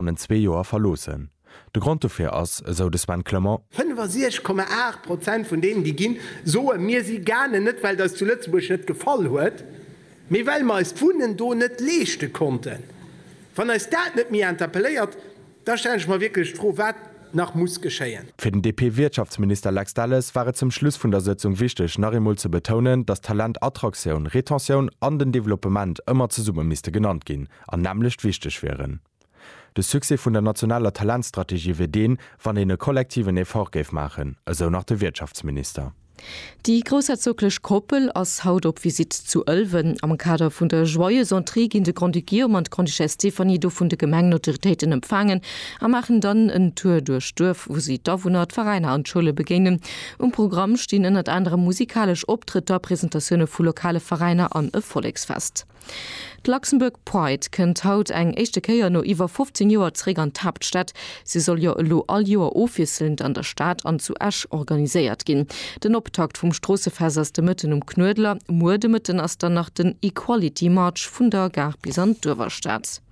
bannent zwee Joer verloossen. De Grond dofir ass, esou de Sven Clement. 65,8 Prozent vun deenen, déi ginn, soen, Mir si gaangen, net well et eis zu Lëtzebuerg net gefall huet, mee well mer eis d'Wunnen do net leeschte konnten. Wann eis dat net méi interpelléiert, da stellen ech mer wierklech d'Fro, wat nach muss geschéien. Fir den DP-Wirtschaftsminister Lex Delles war et zum Schluss vun der Sëtzung wichteg, nach eemol ze betounen, datt Talent, Attraktioun, Retentioun an den Developpement ëmmer zesumme misste genannt ginn. an nämmlecht wichteg wieren. De Succès vun der nationaler Talentstrategie wier deen, wann een e kollektiven Effort géif maachen, esou nach de Wirtschaftsminister. Déi groussherzoglech Koppel ass haut op Visitt zu Ëlwen. Am Kader vun der Joyeuse Entrée ginn de Grand-Duc Guillaume an d'Grande-Duchesse Stéphanie do vun de Gemengenautoritéiten empfaangen a maachen dann en Tour duerch d'Duerf, wou si d'Awunner, d'Veräiner an d'Schoule begéinen. Um Programm stinn ënnert anerem musikalesch Optrëtter, Presentatioune vu lokale Veräiner an e Volleksfest. D'Luxembourg Pride kënnt haut eng éischte Kéier no iwwer 15 Joer zeréck an d'Haaptstad. Si soll jo elo all Joer ofwiesselend an der Stad an zu Esch organiséiert ginn. Den Optakt vum Stroossefest ass de Mëtten um Knuedler. Muer de Mëtten ass dann nach den Equality March vun der Gare bis an d'Uewerstad.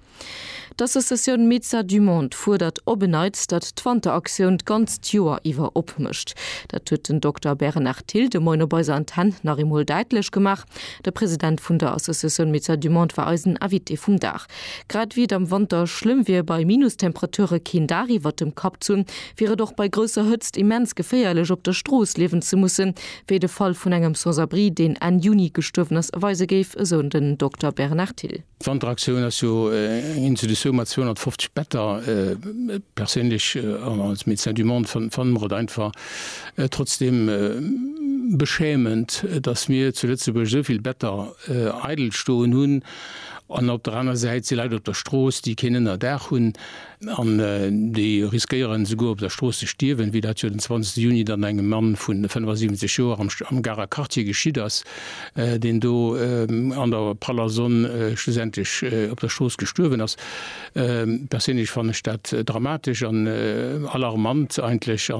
D'Associatioun Médecins du Monde fuerdert op en Neits, datt d'Wanteraktioun d'ganzt Joer iwwer opmécht. Dat huet den Dokter Bernard Thill de Moien op eiser Antenn nach eemol däitlech gemaach. De President vun der Associatioun Médecins du Monde war eisen Invité vum Dag. Grad ewéi et am Wanter schlëmm wier, bei Minustemperature keen Daach iwwert dem Kapp ze hunn, wier et och bei grousser Hëtzt immens geféierlech, op der Strooss liewen ze mussen, wéi de Fall vun engem Sans-abri, deen Enn Juni gestuerwen ass, weise géif, esou den Dokter Bernard Thill. D'Wanteraktioun ass jo eng Institutioun mat 250 Better. Perséinlech an als Médecin du Monde fanne mer et einfach trotzdeem beschämend, datt mir zu Lëtzebuerg esou vill Better eidel stoen hunn an op der aner Säit si Leit op der Strooss, déi keen Ënnerdaach hunn. An déi riskéieren esouguer op der Strooss ze stierwen, wéi dat jo den 20 Juni dann engem Mann vu 75 Joer am Garer Quartier geschitt ass, deen do an der praller Sonn schlussendlech op der Strooss gestuerwen ass. Perséinlech fannen ech dat dramatesch an alarmant eigentlech.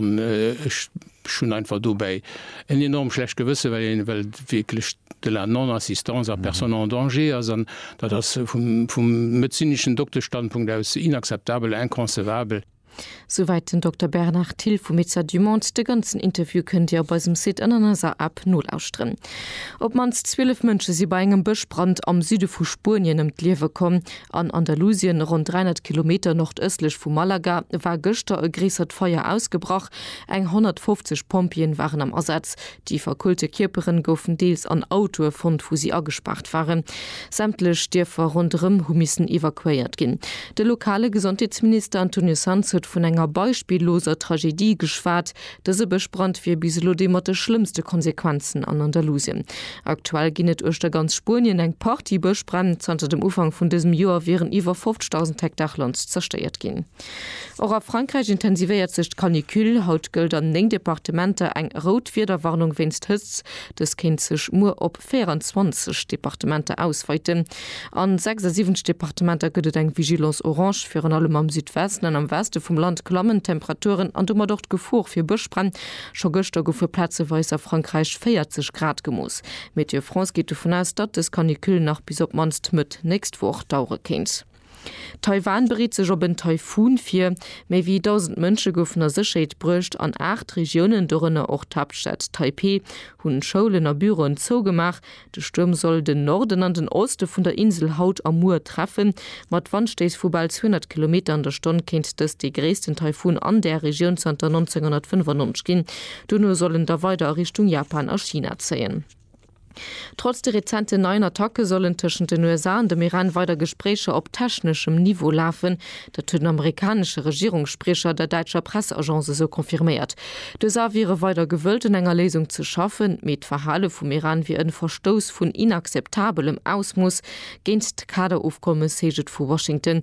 Ech hunn einfach dobäi en enorm schlecht Gewësse, well een well wierklech de la non-assistance à personnes en danger ass. An dat ass vum vum medezineschen Dokteschstandpunkt aus inakzeptabel, inconcevable. Souwäit den Dokter Bernard Thill vu Médecins du Monde. De ganzen Interview kënnt Dir op eisem Site an an eiser App nolauschteren. Op d'mannst 12 Mënsche si bei engem Bëschbrand am Süde vu Spuenien ëm d'Liewe komm. An Andalusien, ronn 300 Kilometer nordëstlech vu Malaga, war gëschter e gréissert Feier ausgebrach. Eng 150 Pompjeeën waren am Asaz. Déi verkullte Kierperen goufen deels an Autoe fonnt, wou si agespaart waren. Sämtlech Dierfer ronderëm hu missen evakuéiert ginn. De lokale Gesondheetsminister Antonio Sanz huet vun enger beispilloser Tragedie geschwat. Dëse Bëschbrand wier bis elo dee mat de schlëmmste Konsequenzen an Andalusien. Aktuell ginn et uechter ganz Spuenien eng Partie Bëschbränn. Zanter dem Ufank vun dësem Joer wieren iwwer 50.000 Hektar Land zerstéiert ginn. Och a Frankräich intensivéiert sech d'Canicule. Haut gëllt an 9 Departementer eng rout Wiederwarnung wéinst Hëtzt. Dës kéint sech muer op 24 Departementer ausweiten. A 76 Departementer gëtt et eng Vigilance orange. Virun allem am Südwesten an am Weste vum Land klammen d'Temperaturen an domat och d'Gefor fir Bëschbränn. Scho gëschter goufe plazeweis a Frankräich 40 Grad gemooss. Météo France geet dovun aus, datt dës Canicule nach bis op d'mannst Mëtt nächst Woch dauere kéint. Taiwan bereet sech op en Taifun vir. Méi wéi 1.000 Mënsche goufen a Sécherheet bruecht an aacht Regiounen, dorënner och d'Haaptstad Taipeh, hunn Schoulen a Büroen zougemaach. De Stuerm soll den Norden an den Oste vun der Insel haut a muer treffen. Mat Wandstéiss vu bal 200 Kilometer an der Stonn kéint dëst dee gréissten Taifun an där Regioun zanter 1995 ginn. Dono soll en da weider a Richtung Japan a China zéien. Trotz de rezenten neien Attacke sollen tëschent den USA an dem Iran weider Gespréicher op techneschem Niveau lafen. Dat huet den amerikanesche Regierungsspriecher der däitscher Presseagence esou confirméiert. D'USA wiere weider gewëllt un enger Léisung ze schaffen, mee d'Verhale vum Iran wier en Verstouss vun inakzeptabelem Ausmooss géint d'Kader-Ofkommes, heescht et vu Washington.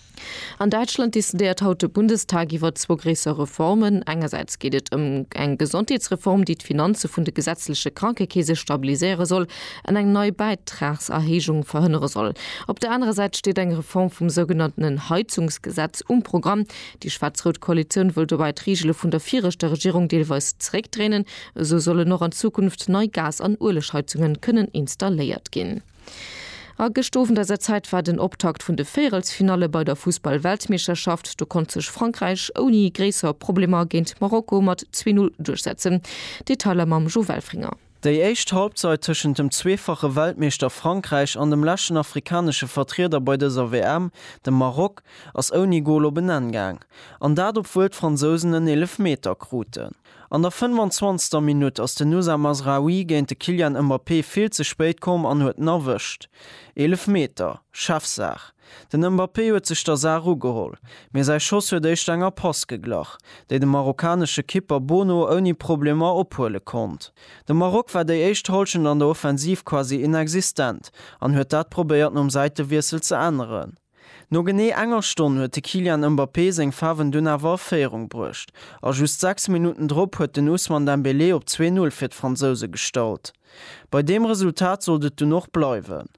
An Däitschland decidéiert haut de Bundestag iwwer zwou gréisser Reformen. Engersäits geet et ëm eng Gesondheetsreform, déi d'Finanze vun de gesetzleche Krankekeese stabiliséiere soll an eng nei Bäitragserhéijung verhënnere soll. Op der anerer Säit steet eng Reform vum sougenanntenen Heizungsgesetz um Programm. Déi schwaarz-rout Koalitioun wëll dobäi d'Reegele vun der viregter Regierung deelweis zeréckdréinen. Esou sollen och an Zukunft nei Gas an Uelegheizunge kënnen installéiert ginn. A gëscht Owend eiser Zäit war den Optakt vun de Véierelsfinalle bei der Fussball-Weltmeeschterschaft. Do konnt sech Frankräich ouni gréisser Problemer géint Marokko mat 2-0 duerchsetzen. Detailer mam Jo Welfringer. Déi éischt Halbzeit tëschent dem zweefache Weltmeeschter Frankräich an dem leschten afrikanesche Vertrieder bei dëser WM, dem Maroc, ass ouni Gol op en Enn gaang. An dat obwuel d'Fransousen en Eelefmeter kruten. An der 25. Minutt ass den Nusa Mazraoui géint de Kylian Mbappé vill ze spéit komm an huet en erwëscht. Eelefmeter, Chefsaach. Den Mbappé huet sech der Saach ugeholl, mee säi Schoss huet éischt enger Pass geglach, déi de marokkanesche Kipper Bono ouni Problemer ophuele konnt. De Maroc war déi éischt Hallschent an der Offensiv quasi inexistent an huet dat probéiert nom Säitewiessel ze änneren. No genee enger Stonn huet de Kylian Mbappé seng Faarwen dunn awer a Féierung bruecht a just 6 Minutten drop huet den Ousmane Dembélé op 2-0 fir d'Fransouse gestallt. Bei deem Resultat sollt et dunn och bleiwen.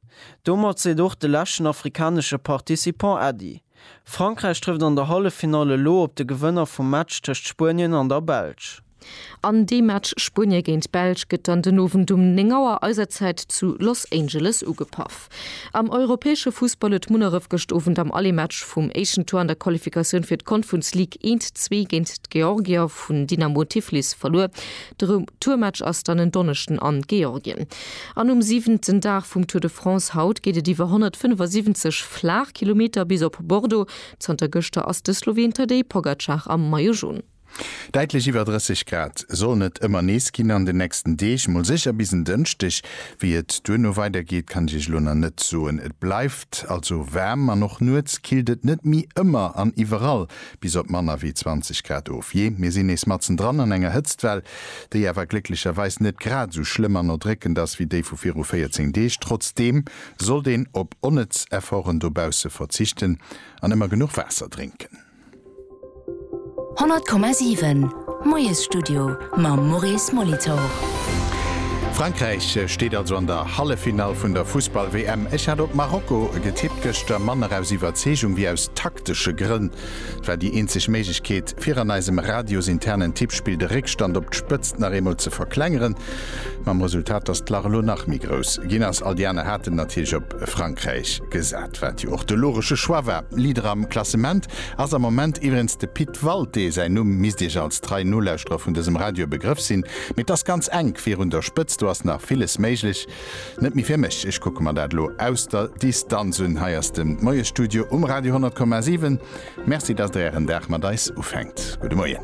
Domat seet och de leschten afrikanesche Participant Äddi. Frankräich trëfft an der Halleffinall elo op de Gewënner vum Match tëscht Spuenien an der Belsch. An dee Match Spuenie géint d'Belsch gëtt dann den Owend um 9 Auer eiser Zäit zu Los Angeles ugepaff. Am europäesche Fussball huet Munneref gëscht Owend am Allematch vum éischten Tour an der Qualifikatioun fir d'Confrence League eent zwee géint d'Georgier vun Dynamo Tiflis verluer. De Retourmatch ass dann en Donneschden an Georgien. An um siwenten Dag vum Tour de France haut geet et iwwer 175 Flaachkilometer bis op Bordeaux. Zanter gëschter ass de Sloween Tadej Pogacar am Maillot Jaune. Däitlech iwwer 30 Grad sollen et ëmmer nees ginn an den nächsten Deeg, mol sécher bis en Dënschdeg. Wéi et duerno weidergeet, kann ech iech elo nach net soen. Et bleift also waarm an och nuets killt et net méi ëmmer an iwwerall bis op manner wéi 20 Grad of. Jee, mir sinn nees matzen dran an enger Hëtztwell, déi awer glécklecherweis net grad esou schlëmm an erdréckend ass wéi déi vu viru 14 Deeg. Trotzdeem sollt een op onnëtz Efforten dobausse verzichten an ëmmer genuch Waasser drénken. 100,7, Moiesstudio mam Maurice Molitor. Frankräich steet also an der Halleffinall vun der Fussball-WM. Ech hat op Marokko getippt gëschter, manner aus Iwwerzeegung wéi aus taktesche Grënn. Et war déi eenzeg Méiglechkeet, fir an eisem radiosinternen Tippspill de Réckstand op d'Spëtzt nach eemol ze verklengeren, mam Resultat, dass d'Lach elo nach méi grouss ginn ass. All déi aner haten natierlech op Frankräich gesat, wat jo och de logesche Choix war. Leader am Klassement ass am Moment iwwerens de Pit Walté. Säin Numm misst Iech als trei Nolauschterer vun dësem Radio e Begrëff sinn, mee et ass ganz enk virun der Spëtzt. Do ass nach villes méiglech. Net méi fir mech, ech kucke mer dat elo aus der Distanz un. Hei ass de Moiesstudio um Radio 100,7. Merci, datt Der Ären Dag mat eis ufänkt. Gudde Moien.